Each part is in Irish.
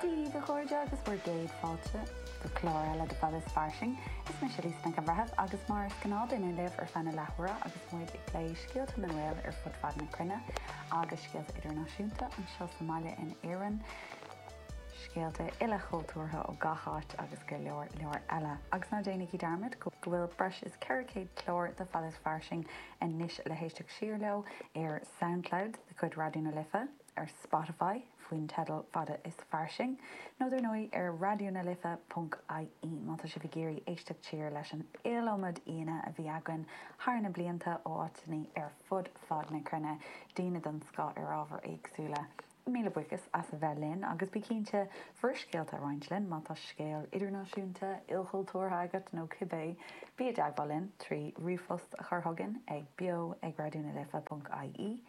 Daoibh, a chairde, agus bhur gcéad fáilte go clár eile de Fada is Fairsing. Is mise Lisa Nic an Bhreithimh agus mar is gnáth dúinn libh ar feadh na leathuaire agus muid ag plé scéalta na nGael ar fud fad na cruinne agus scéalta idirnáisiúnta, anseo sa mbaile in Éirinn, scéalta ilchultúrtha ó gach áit agus go leor, leor eile. Agus ná déanaigí dearmad go bhfuil breis is 400 clár de Fada is Fairsing anois le héisteacht siar leo ar Soundcloud de chuid Raidió na Life. ar Spotify faoin teideal Fada is Fairsing, nó dar ndóigh ar Raidió na Life ponc ie má tá sibh ag iarraidh éisteacht siar leis an iliomad aoíanna a bhí againn thar na blianta ó áiteannaí ar fud fad na cruinne, daoine den scoth ar ábhair éagsúla. Míle buíochas as a bheith linn agus bí cinnte bhur scéalta a roinnt linn má tá scéal idirnáisiúnta, ilchultúrtha agat nó cibé. Bí i dteagmháil linn trí ríomhphost a chur chugainn ag beo ag Raidió na Life ponc ie.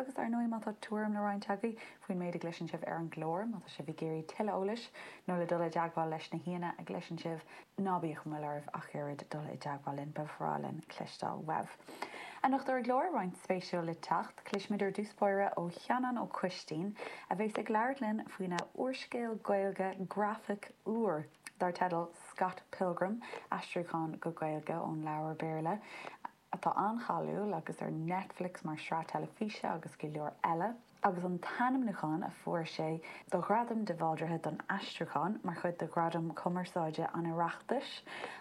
Agus ar ndóigh má tá tuairim le roinnt agaibh faoin méid a gcloiseann sibh ar an gclár, má tá sibh ag iarraidh tuilleadh eolais nó le dul i dteagmháil leis na haíonna a gcloiseann sibh, ná bíodh aon mhoill oraibh ach oiread dul i dteagmháil linn, ba bhreá linn cloisteáil uaibh. Anocht ar an gclár, roinnt spéisiúil le teacht. Cloisfimid ar dtús báire ó Sheanán Ó Coistín, a bheas ag labhairt linn faoina úrscéal Gaeilge grafaic úr dar teideal Scott Pilgrim, aistriúchán go Gaeilge ón leabhar Béarla. atá an-cháiliúil agus ar Netflix mar shraith teilifíse agus go leor eile, agus an t-ainmniúchán a fuair sé do Ghradam de Bhaldraithe don Aistriúchán mar chuid de Ghradaim Chumarsáide an Oireachtais,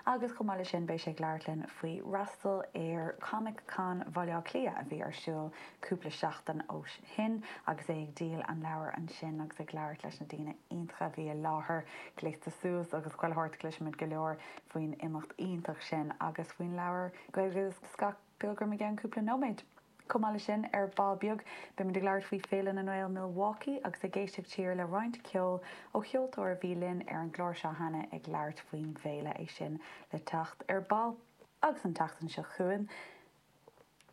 agus chomh maith leis sin beidh sé ag labhairt linn faoi fhreastal ar Comic Con Bhaile Átha Cliath a bhí ar siúl cúpla seachtain ó shin agus é ag díol an leabhair ansin agus ag labhairt leis na daoine iontacha a bhí i láthair. Gléasta suas agus chuile shórt, cloisfimid go leor. faoin imeacht iontach sin agus faoin leabhar Gaeilge Scott Pilgrim i gceann cúpla nóiméad. Chomh maith le sin, ar ball beag, beimid ag labhairt faoi Féile na nGael Milwaukee agus ag éisteacht siar le roinnt ceoil ó cheoltóir a bhí linn ar an gclár seo cheana ag labhairt faoin bhféile, é sin le teacht ar ball. Agus an tseachtain seo chugainn,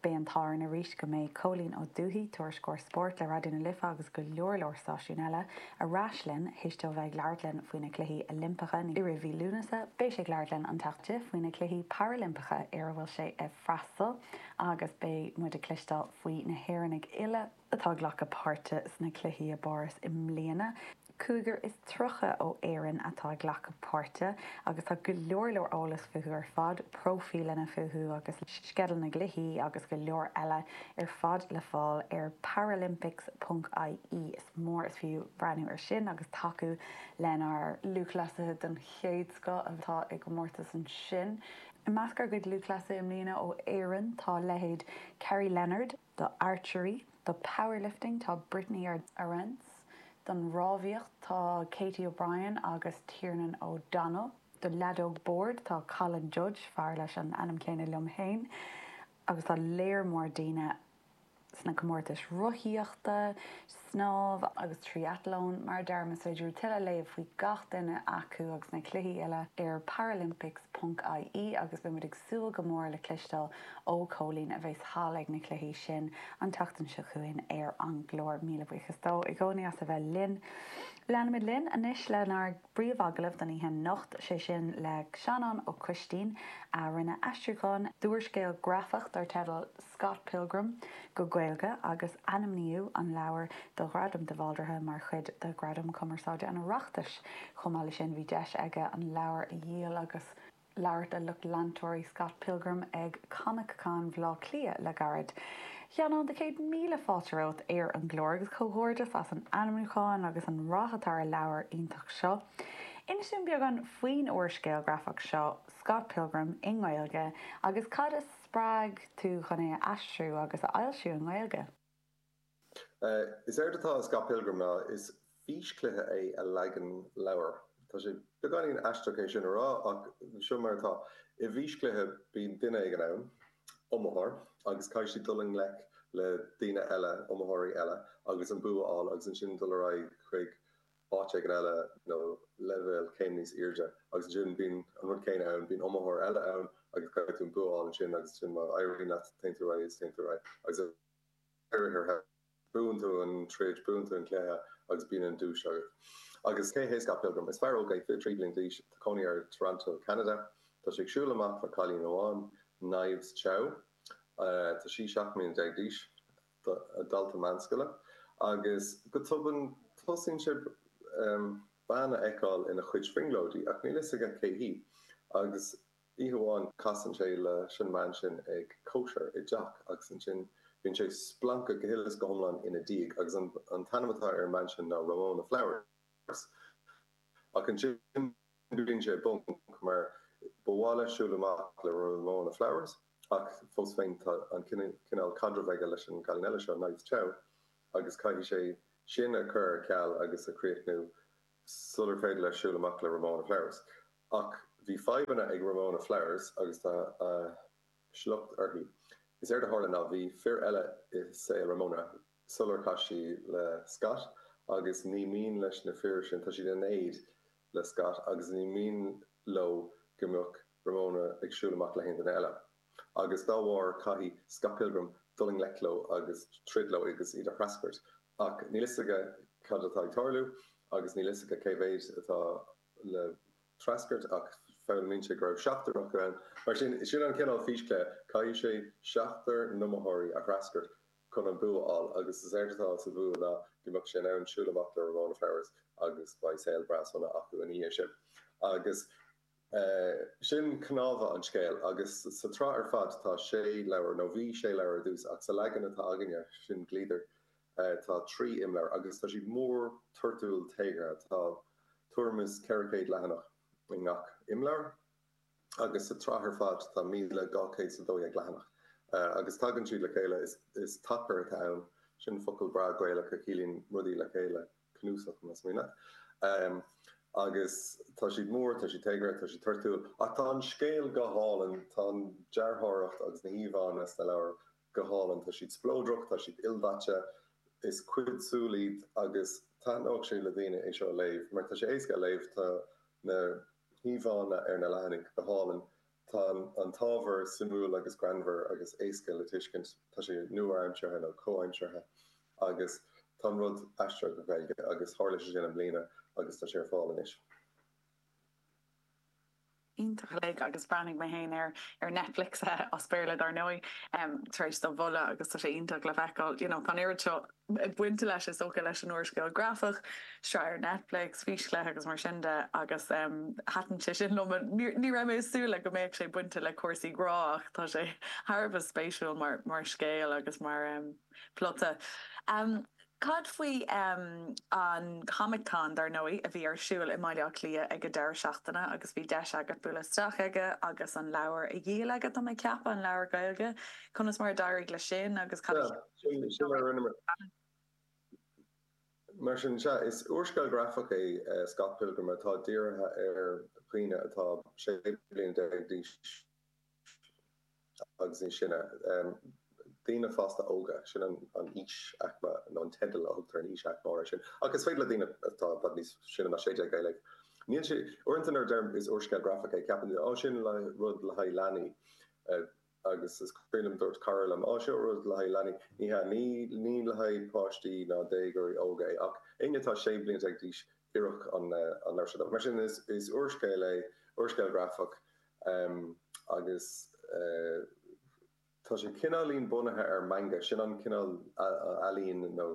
Beidh an t-ádh orainn arís go mbeidh Cóilín Ó Dubhthaigh, Tuairisceoir Spóirt le Raidió na Life agus go leor leor stáisiún eile, ar ais linn théis dó bheith ag labhairt linn faoi na Cluichí Oilimpeacha i rith mhí Lúnasa. Beidh sé ag labhairt linn an tseachtain seo faoi na Cluichí Parailimpeacha ar a bhfuil sé ag freastal agus beidh muid ag cloisteáil faoi na hÉireannaigh uile, atá ag glacadh páirte sna cluichí i bPáras i mbliana. Cúigear is tríocha ó Éirinn atá ag glacadh páirte agus tá go leor leor eolas fúthu ar fad, próifíleanna fúthu agus sceideal na gcluichí agus go leor eile ar fad le fáil ar paralympics ponc ie. Is mór is fiú breathnú ar sin agus tacú lenár lúthchleasaithe den chéad scoth atá i gcomórtas ansin. I measc ár gcuid lúthchleasaithe i mbliana ó Éirinn tá leithéid Kerrie Leonard, do archery, do powerlifting tá Brittany Arendse, don rámhaíocht tá Katie O'Brien agus Tiernan O'Donnell, do leadóg boird tá Colin Judge, fear leis an ainm céanna liom féin, agus tá léar mór daoine sna comórtais rothaíochta, Snámh agus Triathlón, mar a deirim, is féidir libh tuilleadh a léamh faoi gach duine acu agus na cluichí eile ar paralympics ponc IE agus beidh muid ag súil go mór le cloisteáil ó Chóilín a bheas thall ag na cluichí sin an tseachtain seo chugainn ar an gclár. Míle buíochas dó i gcónaí as a bheith linn. Leanfaimid linn anois lenár. bpríomh-agallamh don oíche anocht, sé sin le Seanán Ó Coistín a rinne aistriúchán d'úrscéal grafach dar teideal Scott Pilgrim go Gaeilge agus ainmníodh an leabhar do Ghradam de Bhaldraithe mar chuid de Ghradaim Chumarsáide an Oireachtais. Chomh maith leis sin bhí deis aige an leabhar a dhíol agus. labhairt le lucht leantóirí Scott Pilgrim ag ComicCon Bhleá Cliath le gairid. A Sheanáin de chéad míle fáilte romhat ar an gclár agus comhghairdeas as an ainmniúchán agus an rath atá ar an leabhar iontach seo. Inis dúinn beagán faoin úrscéal grafach seo, Scott Pilgrim i nGaeilge agus cad a spreag tú chun é a aistriú agus a fhoilsiú i nGaeilge. Is éard atá i Scott Pilgrim ná is físchluiche é i leagan leabhair. Tá sé beagáinín aisteach é sin a rá ach seo mar atá. I bhfíschluiche bíonn duine éigin ann, iomaitheoir, agus caithfidh sé dul i ngleic le daoine eile, iomaitheoirí eile, agus an bua a fháil agus ansin dul ar aghaidh chuig áit éigin eile nó leibhéal céim níos airde agus ansin bíonn an rud céanna ann, bíonn iomaitheoir eile ann agus caithfidh tú an bua a fháil ansin agus ansin má éiríonn leat téann tú ar aghaidh is téann tú ar aghaidh agus é oirtheardha. Buann tú an troid, buann tú an cluiche agus bíonn an duais agat. Agus cé hé Scott Pilgrim? Is fear óg é, 23 bliain d'aois, tá cónaí air i dToronto, Ceanada. Tá sé ag siúl amach le cailín amháin, Knives Chau. Tá sí 17 mbliana d'aois, dalta meánscoile. Agus go tobann tosaíonn sé bean a fheiceáil ina chuid brionglóidí, ach níl fhios aige cé hí. Agus Oíche amháin casann sé leis an mbean sin ag cóisir i dteach agus ansin bíonn sé splanctha go huile is go hiomlán ina diaidh agus an t-ainm atá ar an mbean sin ná Ramona Flowers. Ach ansin bíonn sé i bponc mar ba mhaith leis siúl amach le Ramona Flowers ach fós féin tá an cineál caidreamh aige leis an gcailín eile seo, Knives Chau, agus caithfidh sé sin a chur ar ceal agus a chríochnú. sular féidir leis siúl amach le Ramona Flowers. Ach bhí fadhbanna ag Ramona Flowers agus tá a shliocht uirthi. Is éard a tharla ná bhí fir eile i saol Ramona sular chas sí le Scott agus ní mian leis na fir sin, tá siad in éad le Scott agus ní mian leo go mbeadh Ramona ag siúl amach le haon duine eile. agus dá bharr sin caithfidh Scott Pilgrim dul i ngleic leo agus troid leo agus iad a threascairt. Ach níl fhios aige cad atá ag tarlú agus níl fhios aige cé mhéid atá le threascairt ach foghlaimíonn sé go raibh seachtar acu ann. Mar sin, sin an cineál físchluiche, caithfidh sé seachtar n-iomaitheoirí a threascairt chun an bua a fháil agus is éard atá sa bhua ná go mbeadh sé in ann siúl amach le Ramona Flowers agus beidh saol breá sona acu ina dhiaidh sin. Agus. Sin cnámha an scéil. Agus sa tsraith ar fad tá sé leabhar, nó bhí sé leabhar ar dtús, ach sa leagan atá againne, sin Gliadar, tá trí imleabhar, agus tá siad mór, toirtiúil, téagartha. Tá tuairim is 400 leathanach i ngach imleabhar, agus sa tsraith ar fad tá míle dhá chéad is a dó dhéag leathanach. Agus tagann siad le chéile, is tacar atá ann, sin focal breá Gaelach a chiallaíonn rudaí le chéile. cnuasach más maith leat. Agus tá siad mór, tá siad téagartha, tá siad toirtiúil, ach tá an scéal go hálainn, tá an dearthóireacht agus na híomhánna sna leabhair go hálainn, tá siad spleodrach, tá siad ildaite, is cuid súl iad agus thaitneodh sé le daoine é seo a léamh mar tá sé éasca a léamh, tá na híomhánna ar na leathanaigh go hálainn Tá an t-ábhar suimiúil agus greannmhar agus éasca le tuiscint. Tá sé nua-aimseartha nó comhaimseartha agus tá an rud aistrithe go Gaeilge agus tharla sé sin i mbliana agus tá sé ar fáil anois. Iontach uilig agus bhreathnaigh mé féin air ar Netflix, as Béarla dár ndóigh, tar éis do mholadh agus tá sé iontach le feiceáil. You know, tá an oiread seo bainte leis is dócha leis an úrscéal grafach, sraith ar Netflix, físchluiche agus mar sin de agus thaitin sé sin liom. Ní raibh mé ag súil le go mbeadh sé bainte le cúrsaí grá ach tá sé thar a bheith spéisiúil mar scéal agus mar phlota. Cad faoi an ComicCon dar ndóigh a bhí ar siúl i mBaile Átha Cliath ag an deireadh seachtaine agus bhí deis agat bualadh isteach aige agus an leabhar a dhíol aige tá mé ag ceapadh, an leabhar Gaeilge. Conas mar a d'éirigh le sin agus cad a cheap. Sin a rinneamar. Mar sin, sea, is úrscéal grafach é Scott Pilgrim atá dírithe ar dhaoine atá 16 bliana d'aois agus níos sine, daoine fásta óga, sin an aois-aicme, nó an teideal a thugtar ar an aois-aicme sin. Ach is féidir le daoine atá i bhfad níos sine ná 16 é a léamh. Níl sé, uaireanta nuair a deirim is úrscéal grafach é ceapann daoine, ó sin rud le haghaidh leanaí. Agus is cuimhin liom dúirt cara liom, Á, seo rud le haghaidh leanaí. Ní hea, ní le haghaidh páistí ná déagóirí óga é, ach éinne atá sé bliana déag d'aois, oireann an leabhar seo dóibh. Mar sin, is úrscéal é, úrscéal grafach, agus tá sé cineáilín bunaithe ar manga, sin an cineál ealaín nó.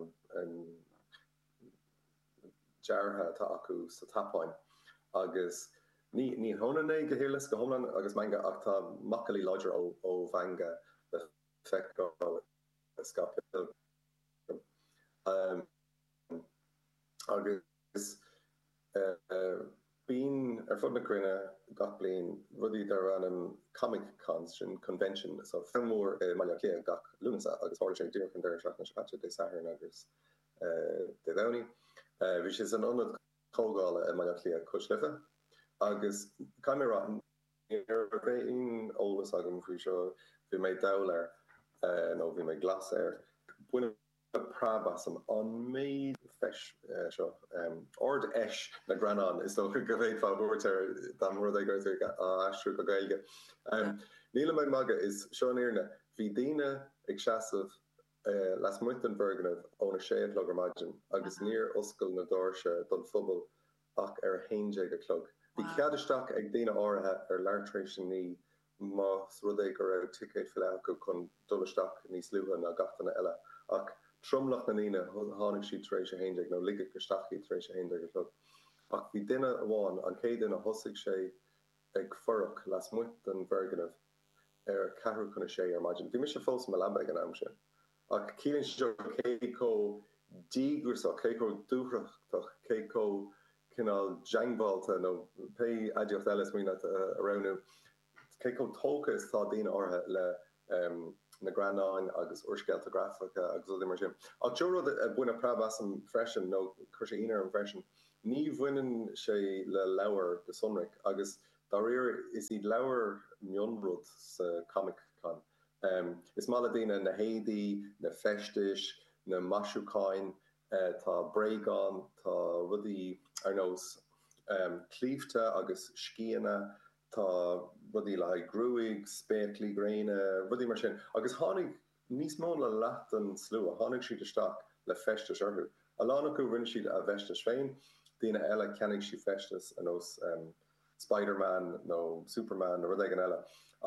deartha atá acu sa tSeapáin agus ní hionann é go huile is go hiomlán agus manga ach tá macallaí láidre ó mhanga le feiceáil i Scott Pilgrim agus bíonn ar fud na cruinne gach bliain rudaí darb ainm Comic Cons, so convention an-mhór i mBaile Átha Cliath gach Lúnasa agus tharla sé díreach an deireadh seachtaine seo caite, Dé Sathairn agus Dé Domhnaigh. Bhí sé san ionad comhdhála i mBaile Átha Cliath, Cois Life, agus caithfidh mé a rá ní raibh aon eolas agam faoi seo. Bhí mé dall air, nó bhí mé glas air. Baineadh preab asam an méid feis seo. Ard-Fheis na nGreannán is dócha go bhféadfá a thabhairt air dá mba rud é go raibh sé á aistriú go Gaeilge. Nílim ag magadh, is seo an fhírinne. Bhí daoine ag seasamh lasmuigh den bhfoirgneamh ón 6 a chlog ar maidin agus níor oscail na doirse don phobal ach ar 11 a chlog. Bhí cead isteach ag daoine áirithe ar leath tar éis a naoi más rud é go raibh ticéad faighte acu chun dul isteach níos luaithe ná gach duine eile. Ach tromlach na ndaoine tháinig siad tar éis 11 nó ligeadh isteach iad tar éis 11 a chlog. Ach bhí duine amháin, an chéad duine, thosaigh sé ag fuireach lasmuigh den bhfoirgneamh. ar a ceathrú chun a sé ar maidin. Bhí mise fós i mo leaba ag an am sin. Ach ciallaíonn seo cé chomh díograsach, cé chomh dúthrachtach, cé chomh cineál diongbháilte, nó pé aidiacht eile is mian leat a roghnú, cé chomh tógtha is atá daoine áirithe leis na greannáin agus úrscéalta grafacha agus rudaí mar sin. Ach seo rud a baineadh preab asam freisin, nó chuir sé ionadh orm freisin. Ní bhaineann sé le leabhair go sonrach, agus Dáiríre, is iad leabhair mionrud sa Comic-Con. Is maith le daoine na héadaí, na feistis, na maisiúcháin. Tá bréagáin, tá rudaí ar nós claímhte agus sceana, tá rudaí le haghaidh gruaig, spéaclaí gréine, rudaí mar sin. Agus tháinig Níos mó ná leath den slua, tháinig siad isteach le feistis orthu. A lán acu, rinne siad a bhfeistis féin, daoine eile, cheannaigh siad feistis ar nós Spider-Man nó Superman nó rud éigin eile.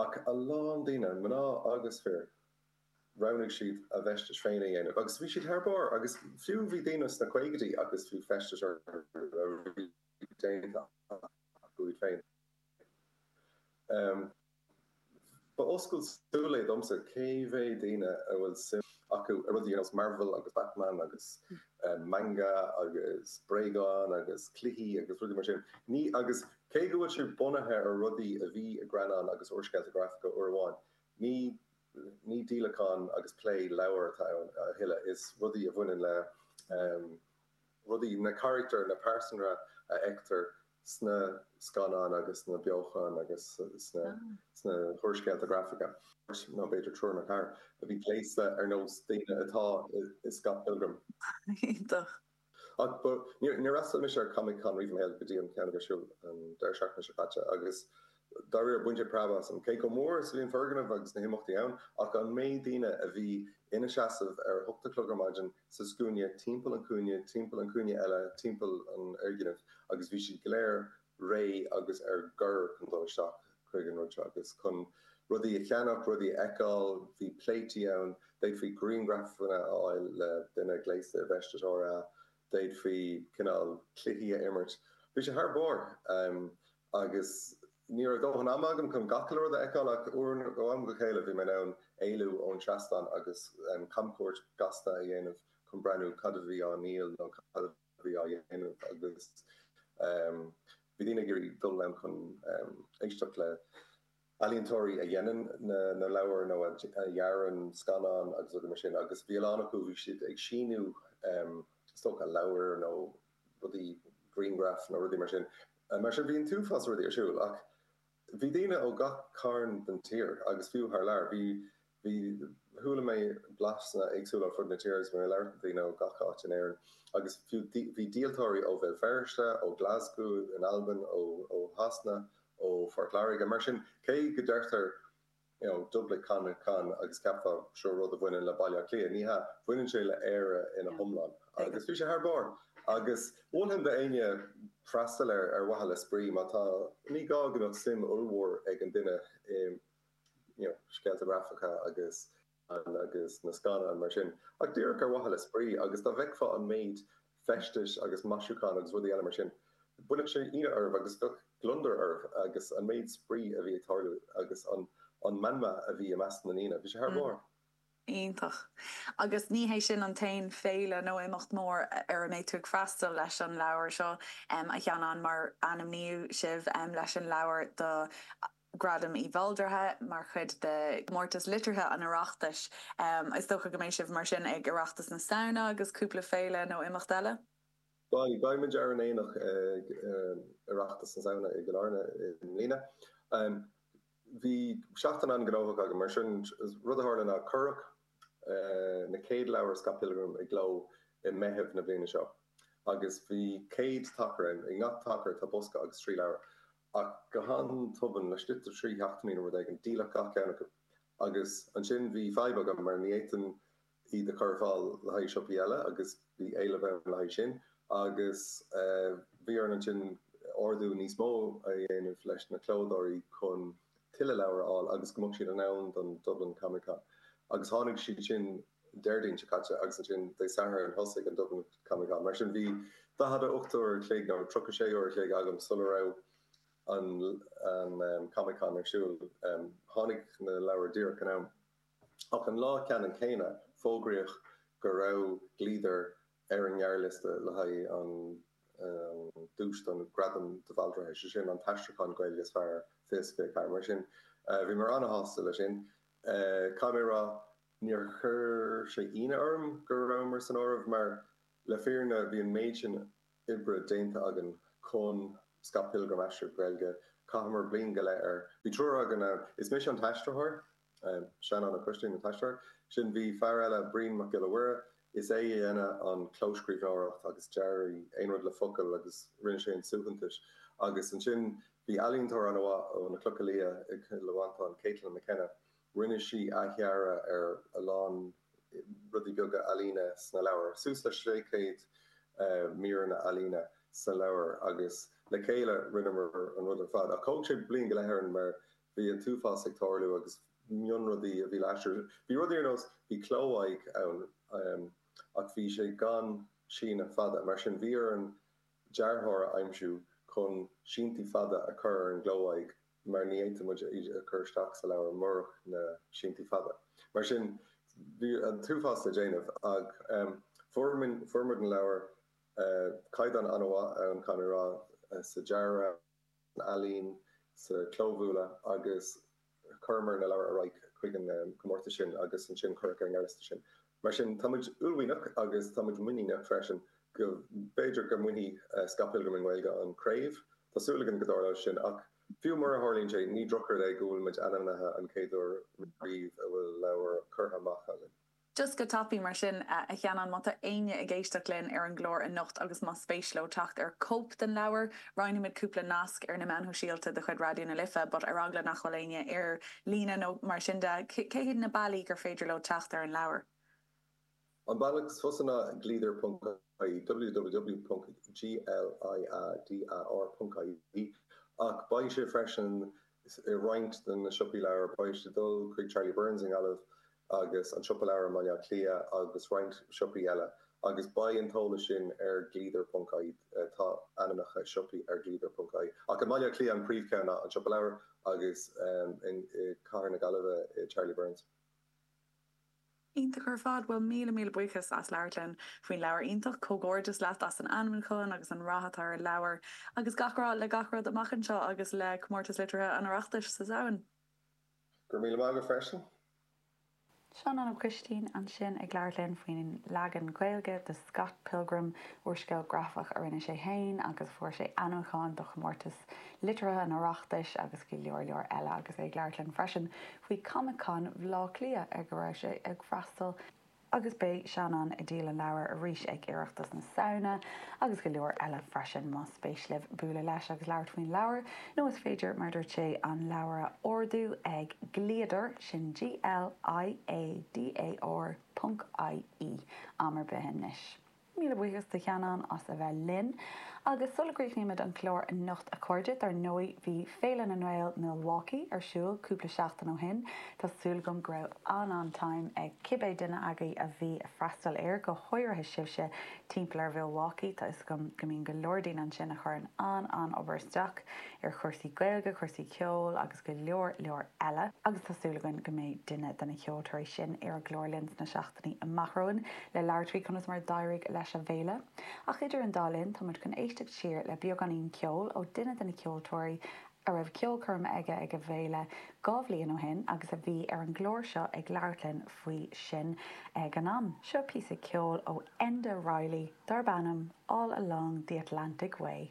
Ach a lán daoine, mná agus fir, roghnaigh siad a bhfeistis féin a dhéanamh. Agus bhí siad thar barr. Agus fiú, bhí daoine sna caogaidí agus bhí feistis orthu a bhí déanta acu iad féin. Ba oscailt súl é domsa cé mhéad daoine a bhfuil suim acu i rudaí ar nós Marvel agus Batman agus manga agus bréagáin agus cluichí agus rudaí mar sin. Ní agus cé go bhfuil sé bunaithe ar rudaí a bhí i greannáin agus úrscéalta grafacha uair amháin, ní ní díolachán agus plé leabhar atá ann a thuilleadh, is rudaí a bhaineann le. rudaí, na carachtair, na pearsanra a fheictear sna scannáin agus sna beocháin agus sna húrscéalta grafacha. Nó b'fhéidir triúr nó ceathrar a bhí gléasta ar nós daoine atá i Scott Pilgrim. Iontach. Ach ba, níor fhreastail mise ar Comic Con riamh i mo shaol go dtí an ceann a bhí ar siúl an deireadh seachtaine seo caite agus Dá réir, baineadh preab asam, cé chomh mór is a bhí an foirgneamh agus na himeachtaí ann, ach an méid daoine a bhí ina seasamh ar a hocht a chlog ar maidin sa scuaine timpeall an chúinne, timpeall an chúinne eile, timpeall an fhoirgnimh, agus bhí siad go léir réidh agus ar gor chun dul isteach chuig an rud seo agus chun rudaí a cheannach, rudaí a fheiceáil. Bhí pléití ann, d'fhéadfaí grianghrafanna a fháil le duine gléasta i bhfeisteas Dora, d'fhéadfaí cineál cluichí a imirt. Bhí sé thar barr. Agus ní raibh dóthain ama agam chun gach uile rud a fheiceáil ach ó am go chéile bhí mé in ann éalú ón seastán agus camchuairt ghasta a dhéanamh chun breathnú cad a bhí á dhíol nó cad a bhí á dhéanamh agus bhí daoine ag iarraidh dul ann chun éisteacht le ealaíontóirí a dhéanann na leabhair nó a dhearann scannáin agus rudaí mar sin agus bhí a lán acu, bhí siad ag síniú is dócha leabhair nó rudaí, grianghraif nó rudaí mar sin. Mar sin bhí an t-uafás rudaí ar siúl ach bhí daoine ó gach cearn den tír agus fiú thar lear. Bhí. Bhí, chuala mé blaseanna éagsúla ar fud na tíre agus mé ag labhairt le daoine ó gach áit in Éirinn agus fiú bhí díoltóirí ó Bhéal Feirste, ó Glasgow in Albain, ó Shasana, ó Phort Láirge. Mar sin, cé go deirtear you know Dublin Comic Con agus ceapfá seo rud a bhaineann le Baile Átha Cliath, ní hea, bhaineann sé le Éire ina hiomlán agus bhí sé thar barr agus mholfainn d'éinne freastal air ar mhaithe le spraoi má tá, ní gá go mbeadh suim ollmhór ag an duine i. you know, scéalta grafacha agus an agus na scannáin mar sin. Ach díreach ar mhaithe le spraoi agus dá bhfeicfeá an méid feistis agus maisiúcháin agus rudaí eile mar sin, chuirfeadh sé ionadh oraibh agus bheadh gliondar oraibh agus an méid spraoi a bhí ag tarlú agus an an meanma a bhí i measc na ndaoine, bhí sé thar barr. Iontach. Agus ní hé sin an t-aon féile nó imeacht mór ar a mbeidh tú ag freastal leis an leabhar seo, a Sheanáin, mar ainmníodh sibh leis an leabhar do. Gradam de Bhaldraithe mar chuid de Chomórtais Liteartha an Oireachtais. Is dócha go mbeidh sibh mar sin ag Oireachtas na Samhna agus cúpla féile nó imeacht eile? Bhuel, beidh muid ar an aonach ag Oireachtas na Samhna i gCill Airne i mbliana. Bhí seachtain an-ghnóthach againn mar sin. Rud a tharla ná cuireadh na chéad leabhair Scott Pilgrim i gcló i Meitheamh na bliana seo agus bhí céad tacar ann. I ngach tacar tá bosca agus trí leabhar. Ach go han-tobann, laistigh de trí sheachtainí nó rud éigin, díoladh gach ceann acu. Agus ansin bhí fadhb agam mar ní fhéadfainn iad a chur ar fáil le haghaidh siopaí eile agus bhí éileamh ann le haghaidh sin. Agus bhí orainn ansin ordú níos mó a dhéanamh leis na clódóirí chun tuilleadh leabhar a fháil agus go mbeadh siad in am don Dublin Comic Con. Agus tháinig siad sin. Déardaoin seo caite agus ansin Dé Sathairn thosaigh an Dublin Comic Con. Mar sin bhí daichead a hocht uair an chloig nó tríocha sé uair an chloig agam sula raibh an Comic Con ar siúl. Tháinig na leabhair díreach in am. Ach an lá ceannann céanna, fógraíodh go raibh Gliadar ar an ngearrliosta le haghaidh an duais do Ghradam de Bhaldraithe, sé sin an t-aistriúchán Gaeilge is fearr, faoi seo Féir Cairn. Mar sin bhí mé an-shásta le sin. Caithfidh mé a rá Níor chuir sé ionadh orm go rabhamar san áireamh mar, le fírinne, bhí an méid sin oibre déanta againn chun Scott Pilgrim a aistriú go Gaeilge, chaitheamar bliain go leith air. Bhí triúr againn ann, is mise an t-aistritheoir, Seanán Ó Coistín an t-aistritheoir, ansin bhí fear eile, Brian Mac Giolla Mhuire, is é a dhéanann an clóscríbhneoireacht agus dearadh aon rud le focail agus rinne sé an suaitheantas agus ansin bhí ealaíontóir an-mhaith ó na Clocha Liatha i gCill Mhantáin, Caitlin McKenna, Rinne sí athdhearadh ar a lán rudaí beaga ealaíne sna leabhair, suas le sé chéad míreanna ealaíne sa leabhar agus le chéile rinneamar an rud ar fad. Ach thóg sé bliain go leith orainn mar bhí an t-uafás ag tarlú agus mionrudaí a bhí laistiar. Bhí rudaí ar nós, bhí cló-aghaidh ann ach bhí sé gan síneadh fada, mar sin bhí orainn dearthóir a aimsiú chun síntí fada a chur ar an gcló-aghaidh. mar ní fhéadfadh muid í a chur isteach sa leabhar murach na síntí fada. Mar sin, bhí an t-uafás le déanamh, ach fuair muid na leabhair. Caighdeán an-mhaith ann, caithfidh mé a rá, sa dearadh, san ealaín, sa chlóbhualadh, agus chuireamar na leabhair ar aghaidh chuig an gcomórtas sin, agus ansin cuireadh ar an ngearrliosta sinn. Mar sin, táimid uaillmhianach agus táimid muiníneach freisin go mb'fhéidir go mbainfidh Scott Pilgrim i nGaeilge an chraobh. Tá súil againn go dtarlóidh sin ach fiú mura dtarlaíonn sé, ní drochrud é go bhfuilimid ainmnithe an chéad uair riamh a bhfuil leabhar curtha amach againn. Just go tapaidh mar sin, a Sheanáin, má tá éinne ag éisteacht linn ar an gclár anocht agus más spéis leo teacht ar chóip den leabhar, Roinnfimid cúpla nasc ar na meáin shóisialta de chuid Raidió na Life but ar eagla nach bhfuil éinne ar líne nó mar sin de, cé hiad na bealaí gur féidir leo teacht ar an leabhar? An bealach is fusa ná ag Gliadar ponc ie, www.gliadar.ie, ach beidh sé freisin i roinnt de na siopaí leabhar. Beidh siad ag dul chuig Charlie Byrne's i nGaillimh agus an Siopa Leabhar i mBaile Átha Cliath agus roinnt siopaí eile, agus beidh an t-eolas sin ar Gliadar ponc ie Tá ainmneacha siopaí ar Gliadar ponc ie ach i mBaile Átha Cliath an príomhcheann ná An Siopa Leabhar agus i gCathair na Gaillimhe Charlie Byrne's. Iontach ar fad! Bhuel, míle míle buíochas as labhairt linn faoin leabhar iontach. Comhghairdeas leat as an ainmiúchán agus an rath atá ar an leabhar. Agus gach rath le gach rud amach anseo agus le Comórtas Liteartha an Oireachtais sa Samhain. Go raibh míle maith agat freisin. Seanán Ó Coistín ansin ag labhairt linn faoin leagan Gaeilge de Scott Pilgrim, úrscéal grafach a rinne sé féin agus fuair sé ainmiúchán do chomórtas liteartha an Oireachtais agus go leor leor eile agus é ag labhairt linn freisin faoi Comic Con Bhaile Átha Cliath ar go raibh sé ag freastal Agus beidh Seanán ag díol an leabhair arís ag Oireachtas na Samhna, agus go leor eile freisin. Más spéis libh bualadh leis agus labhairt faoin leabhar, nó is féidir, mar dúirt sé, an leabhar a ordú ag Gliadar, sin G-L-I-A-D-A-R ponc I-E, am ar bith anois. Míle buíochas do Sheanán as a bheith linn. Agus sula gcríochnaímid an clár anocht a chairde, dár ndóigh bhí Féile na nGael Milwaukee ar siúl cúpla seachtain ó shin. Tá súil agam go raibh an-an-time ag cibé duine agaibh a bhí ag freastal air, go háirithe sibhse timpeall ar Mhilwaukee. Tá 'fhios agam go mbíonn go leor daoine ansin a chuireann an-an-obair isteach ar chúrsaí Gaeilge, cúrsaí ceoil agus go leor leor eile. Agus tá súil againn go mbeidh duine de na ceoltóirí sin ar an gclár linn sna amach romhainn le labhairt faoi conas mar a d'éirigh leis a' bhféile. Ach idir an dá linn, táimid chun éisteacht siar le beagáinín ceoil ó duine de na ceoltóirí a raibh ceolchoirm aige ag a' bhféile dhá bhliain ó shin agus a bhí ar an gclár seo ag labhairt linn faoi sin ag an am. Seo píosa ceoil ó Enda Reilly darb ainm 'All Along the Atlantic Way'.